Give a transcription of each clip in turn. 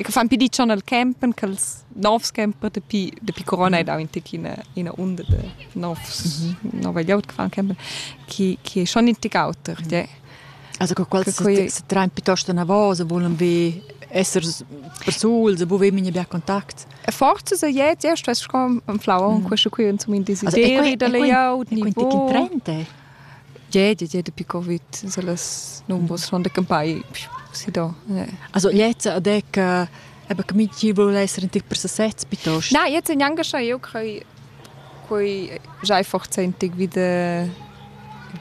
che fan pi dicion al campen che els novs camper dapi dapi corona ed aint ina ina unda de novs mm -hmm. nova glieud che fan campen che che schon in tic auter mhm. ja. Also che quels se, se train piuttosto una voce volen be esser persuls e buve minha bia contact. E forza se jetzt erst was schon am Flau und mhm. questo qui zum in desideri da layout niveau. Quindi 30 Ie, ie, ie dapi Covid sun las numbers sun campai si do. Also jetzt ad ec eben che minchün voul esser in tic per sesez piuttost. Na, jetzt in engascha eu quai quai già forzentig wieder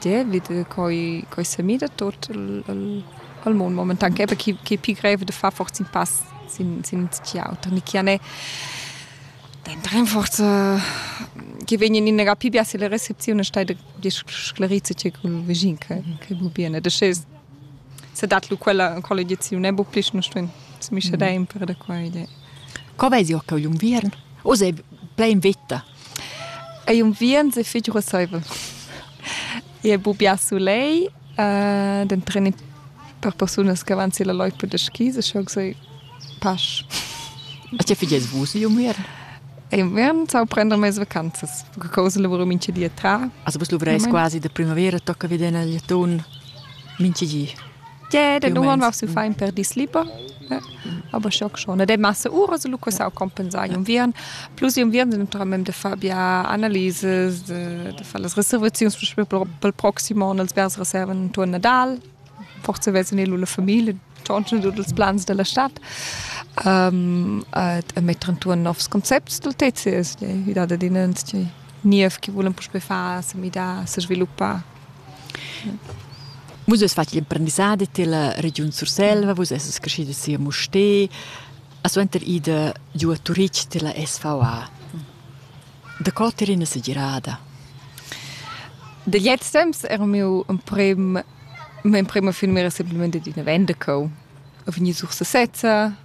die wieder quai quai semi da tot al al al mond momentan che chi chi pi grev da far forz in pass sin sin ins auter ni chi ne Dent rinforze che vegnen in era pibia se le recepzione stai sclerizze che col vegin che che bu bene de sche se dat lu quella collegiazione bu pli non stuen mi sche da impere da qua idee Co vesi occa un viern? O sei plein vetta? Ei un viern se figura saiva. E bu bia sulei Den treni per persunas che van silla loipa da skis e schau sei pasch. A tge figies vus inviern? Inviern sau prender mes vacanzas. Che cosa lavura mincha di a tra. Also vus luvreis quasi da primavera, tocca vedere il lettun mincha di. Ie, yeah, den uman va su fein per dis liber. aber schock schon de masse ura so lucas au compensai un vien plus un vien naturalment de far bia analyses de, de far las reservazions pel proximo on els vers reserven intorno Nadal forse vezen il la familie tschonchen tut ils plans della stadt um, e, e metteren tuon novs concepts del TCS, die wieder den Niev che volen puspe far, se mi da, se sviluppar Vus es fat l'imprendissadi tilla regiun Surselva, vus essas creschidas si a Mustér, a suenter ida giù a Turitg tilla SVA. Da co t'er ina segirada? Da gliez temps era miu emprem, mia emprema finmira semplamain d'üna vendecau. Ho vegni sur sesezza,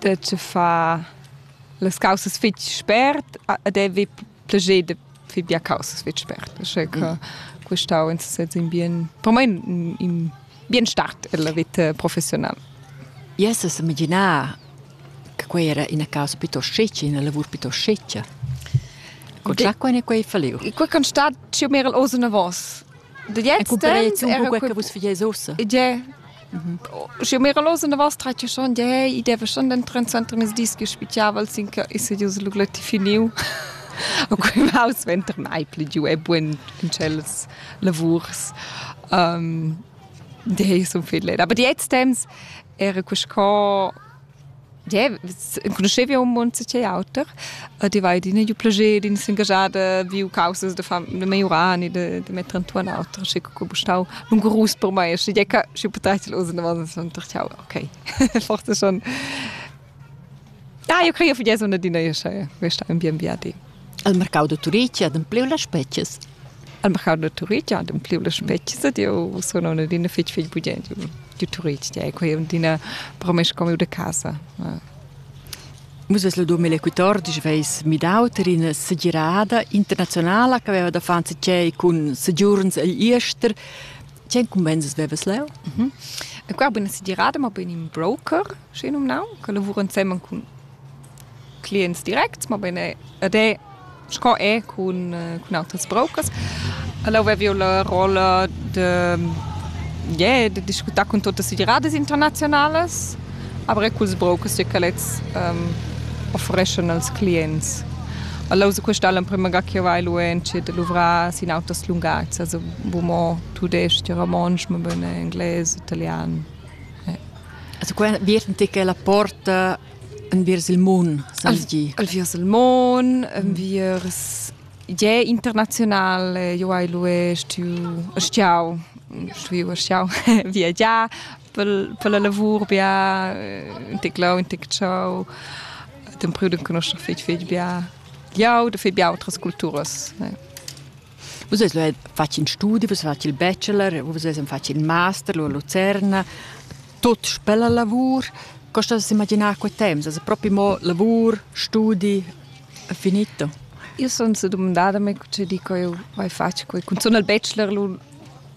dad far las causas fitg spert ed avevi plascher da far bia causas fitg spert. Che mm. questau insatge in bien, per me in, in bien start della vita professionale. Yes, es imaginar che quei era ina causa piuttosto sceccia, una lavur piuttosto sceccia. Con già quei ne quei falliu. Quei kan stat più mer als una vos. De jetzt un po' che vus figais ossa. Ja, Schi mira los in da vas tratg schon de i deve schon den tren center mis dis che spichiaval sin che is ius lugleti finiu. A quei maus venter mai pli giu e buin in tschels lavurs. Um, de sun fidlet. Aber die jetzt temps era quest co Yeah, conoscevi un mund che auter. Ti vai d'ina giu plager, d'in s'ingagiada, viu causas da fam da maiurar ni da da metter entuorn auter, schi co stau lungurus per mai, schi ja ca schi potresti usen davant suenter ciao, okay. Forse schon. Ah, io crei che fu ja so una dina io sche questa un bien viadi. El marcau da Turitg ha adempliu las spetgas. El marcau da Turitg ha adempliu las spetgas ed jeu sun aunc adina fetg fetg bugen giu, giu Turitg. Tier quei è adina promes comiu da casa. Vus ves lu 2014 veis midau tar ina segirada internazionala che haveva da far tgei cun segiurns egl jester. Tgei incumbensas vevas leu? Mm -hmm. Qua buna segirada, ma bein in broker, sch'ei numnau, che lavura ensemen cun clients directs, mabain e ed è sco è cun cun autras brokers. Ella avevi eau la rolla da ie da discutar cun tuottas federadas internaziunalas, aber eir culs brokers tge ch'elets offereschan als clients. Ella usa quista l'emprima ga ch'eu vai luentschi da luvrar sin auters lungatgs, also bo mo tudais-ch e romontsch, mabain englais, italian. Also qua vierten ti che la porta enviers il mun, sens gi. Enviers il mun, enviers je internazionale, io hai lui stiu stiau, stuiu stiau viagiar per per la lavur bia, un tic là, un tic ciao. Tempriu d'enconoscer fetg fetg bia. Jau da fetg bia outras culturas. Ja. Vus eis lu fatg in studi, vus fatg il bachelor, vus eis fatg in master lu a Lucerna. Tut spella lavur. Co stat a imaginar quei temps? Also propi mo lavur, studi, è finito? Io sun sedumandada me co dico eu vai fatg quei. Cunzun al bachelor lu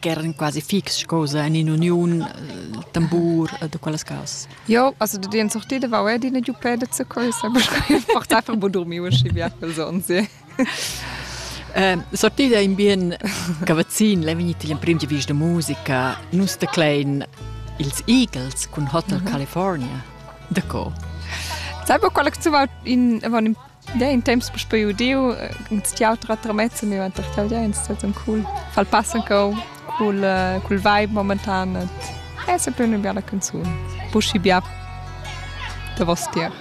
ch'eran quasi fix scosa en in'uniun, il tambur da quellas cas. Jo, also de den sorti de vau edi ne giu pede ze coi, sempre schai portar per bo dormi uschi via quel son, sì. Ehm, sortida in bien cavazzin, l'hai vegnit il emprim di vis de musica, nus te klein ils Eagles cun Hotel California. D'accord. Sai bo quella che zuva in, in Ja, in temps puspei udiu, ins ti autra tramezza miu enter tau, ja, ins staton cool. Fal passan cau cul cul vibe momentan et è sempre una bella canzone. Buschi bia da vos tier.